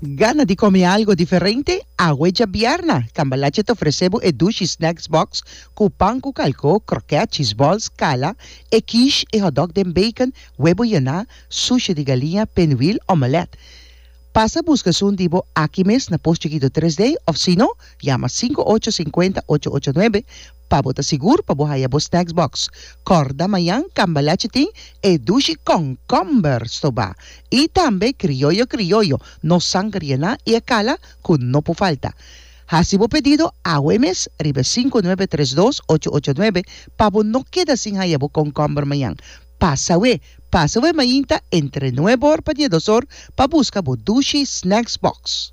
Gana di kome algo diferente? Awe djabièrnà, Cambalache ta ofresé bo e dushi snacks box ku pan ku kalkó, krokèt, cheese balls, kala, e quiche, e hotdog den bacon, webo yená, sushi di galiña, pinwheel, omelèt. Pasa buska esun di bo aki mes na Post Chikito Tres Day òf sino yama sinku ocho sinkuenta ocho ocho nuebe Pa bo ta sigur pa bo haya bo snacks box, kòrda mañan Cambalache tin e dushi kònkòmber stobá i tambe krioyo krioyo no sangriená i e kala ku no por falta. Hasi bo pedido awe mes riba e sinku nuebe tres dos ocho ocho nuebe pa bo no keda sin haya bo kònkòmber mañan. Pasa awe pasa awe mainta entre nuebe or pa diados or pa buska bo dushi snacks box.